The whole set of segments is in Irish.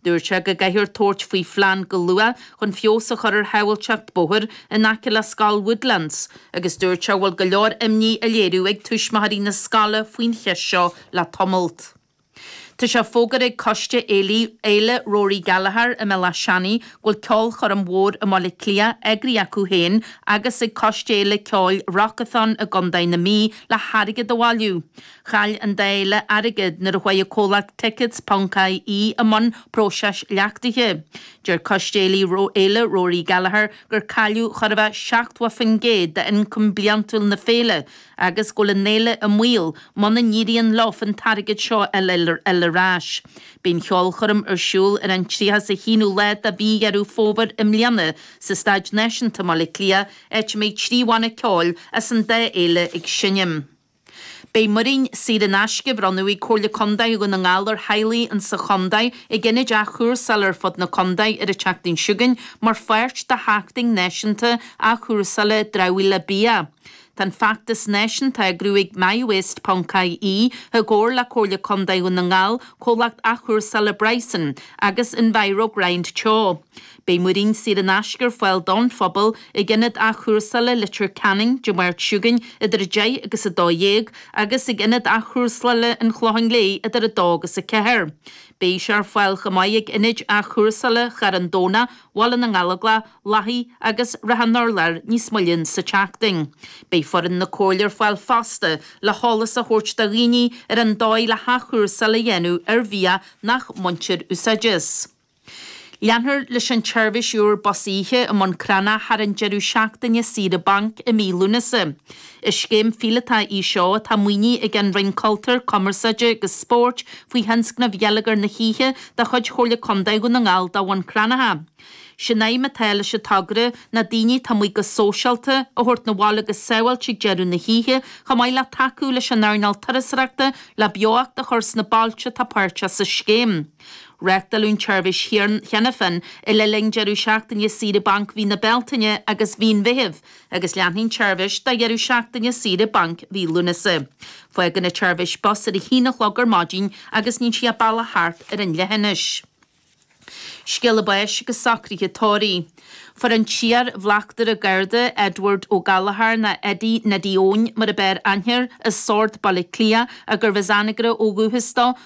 Dúirt sé go gcaithfear tabhairt faoi phlean go luath chun feabhas a chur ar shábháilteacht bóthair in aice le scoil Woodlands agus dúirt sé go bhfuil go leor imní á léiriú ag tuismitheoirí na scoile faoin cheist seo le tamalt. Tá sé fógartha ag Coiste Fhéile Rory Gallagher i mBéal Áth Seanaidh go bhfuil ceolchoirm mhór i mBaile Átha Cliath eagraithe acu féin agus ag Coiste Fhéile Ceoil Rockathon i gContae na Mí le hairgead a bhailiú Chaill an dá fhéile airgead nuair a chuaigh an comhlacht Tickets.ie i mbun próiseas leachtaithe. Deir coiste Fhéile Rory Gallagher gur cailleadh chóir a bheith 70% d'ioncam bliantúil na féile agus go bhfuil an fhéile i mbaol muna n-éiríonn leofa an t-airgead seo a fháil ar ais. Beidh an cheolchoirm ar siúl ar an 31ú lá de mhí Dheireadh Fómhair i mbliana sa Staid Náisiúnta i mBaile Átha Cliath, áit a mbeidh trí bhanna ceoil as an dá fhéile ag seinm. Beidh muirín saor in aisce á bhronnadh ag Comhairle Contae Dhún na nGall ar theaghlaigh insa chontae ag ionaid athchúrsála ar fud na contae ar an tseachtain seo chugainn mar pháirt de Sheachtain Náisiúnta Athchúrsála Dramhaíola Bia. Tá an feachtas náisiúnta á eagrú ag MyWaste.ie i gcomhar le Comhairle Contae Dhún na nGall, Comhlacht Athchúrsála Bryson agus EnviroGrind Teo. Beidh muirín saor in aisce ar fáil don phobal ag Ionad Athchúrsála Leitir Ceanainn Dé Máirt seo chugainn idir 10 agus 12 agus ag Ionad Athchúrsála an Chlocháin Léith idir 2 agus 4. Beidh sé ar fáil chomh maith ag Ionaid Athchúrsála Charn Domhna, Bhaile na nGallóglach, Lathaigh agus Shrath an Urláir níos moille insa tseachtain. Beidh foireann na Comhairle ar fáil fosta le heolas a thabhairt do dhaoine ar an dóigh le hathchúrsáil a dhéanamh ar bhia nach mbaintear úsáid as. Leanfar leis an tseirbhís úr bus oíche i mBun Cranncha thar an deireadh seachtaine saoire bainc i mí Lúnasa. Is scéim phíolótach í seo atá maoinithe ag an Roinn Cultúir, Cumarsáide agus Spóirt faoi Thionscnamh Gheilleagar na hOíche de chuid Chomhairle Contae Dhún na nGall do Bhun Cranncha. Sé'n aidhm atá leis an togra ná daoine atá amuigh go sóisialta a thabhairt 'na bhaile go sábháilte ag deireadh na hoíche chomh maith le tacú leis an earnáil turasóireachta le beocht a chur sna bailte atá páirteach sa scéim. Reachtáladh an tseirbhís cheana féin le linn deireadh seachtaine saoire bainc mhí na Bealtaine agus mhí an Mheithimh agus leanfaidh an tseirbhís do dheireadh seachtaine saoire bainc mhí Lúnasa. Fágann an tseirbhís Bus Áras ar a haon a chlog ar maidin agus níonn sí a bealach thart ar an leithinis. Scéala báis agus socraithe tórraimh. Fuair an t-iar Bhleachtaire Garda Edward O Gallagher ná Eddie Neddy Eoin mar ab fhearr aithne air i Sord Baile Átha Cliath agus arbh as Anagaire ó dhúchas dó,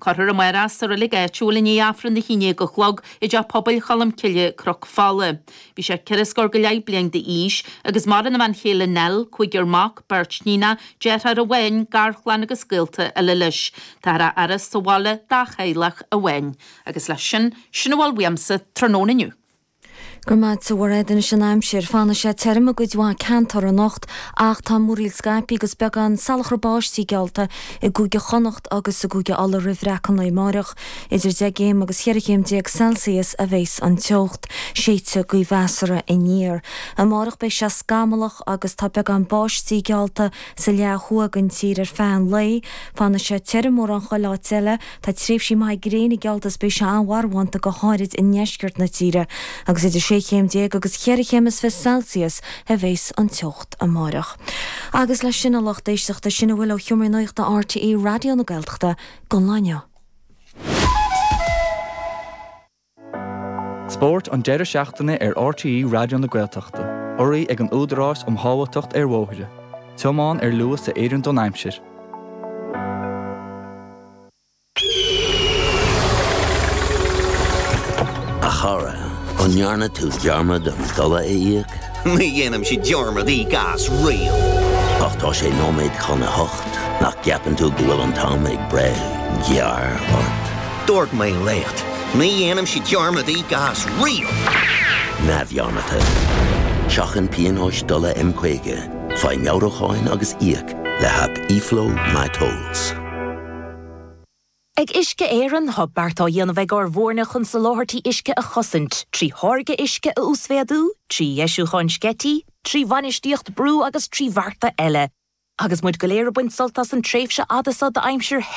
Cuirfear amáireach sa roilig áitiúil i ndiaidh Aifreann a haon déag a chlog i dteach pobail Cholm Cille, Cnoc Fola. Bhí sé ceithre scór go leith bliain d'aois, agus maireann a bhean chéile Nell, cúigear mac, beirt níoná, deartháir amháin, garchlann agus gaolta eile leis. Táthar á fhaire sa bhaile dá theaghlach amháin. Agus leis sin, sin a bhfuil uaimsa tráthnóna inniu. Go raibh maith agat, a Bhairbre. Anois an aimsir. Fanfaidh sé tirim i gcuid mhaith ceantar anocht ach tá múraíl scaipthe agus beagán salachar báistí geallta i gCúige Chonnacht agus i gCúige Uladh roimh bhreacadh an lae amáireach. Idir deich gcéim agus cheithre chéim déag Celsius a bheas an teocht. Séidfidh gaoth mheasartha aniar. Amáireach beidh sé scamallach agus tá beagán báistí geallta sa leath thuaidh den tír ar feadh an lae. Fanfaidh sé tirim mórán chuile áit eile Tá tréimhsí maithe gréine geallta is beidh sé an-bhrothallach go háirid i ndeisceart na tíre agus idir sé chéim déag agus cheithre chéim is fiche Celsius a bheas an teocht amáireach. Agus leis sin a lucht éisteachta, sin a bhfuil ó sheomra nuachta RTÉ Raidió na Gaeltachta don lá inniu. Spórt an deireadh seachtaine ar RTÉ Raidió na Gaeltachta, urraí ag an Údarás um Shábháilteacht ar Bhóithre, Tiomáin ar Luas a Oireann don Aimsir. A chara, an ndearna tú dearmad an dola a íoc? Ní dhéanaimse dearmad íoc as riamh. Ach tá sé nóiméad chun a hocht, nach gceapann tú go bhfuil an t-am ag breith gearr ort? Dúirt mé leat, ní dhéanaimse dearmad íoc as riamh! Neamhdhearmadta. Seachain pionóis dola M50, faigh meabhrúcháin agus íoc le haip eFlow MyTolls. Ag Uisce Éireann tá beart á dhéanamh ag ár bhfoirne chun soláthairtí uisce a chosaint, trí tháirgeadh uisce a uasmhéadú, trí dheisiúcháin sceití, trí bhainistíocht brú agus trí bhearta eile. Agus muid go léir ag baint sult as an tréimhse fhada seo d'aimsir the,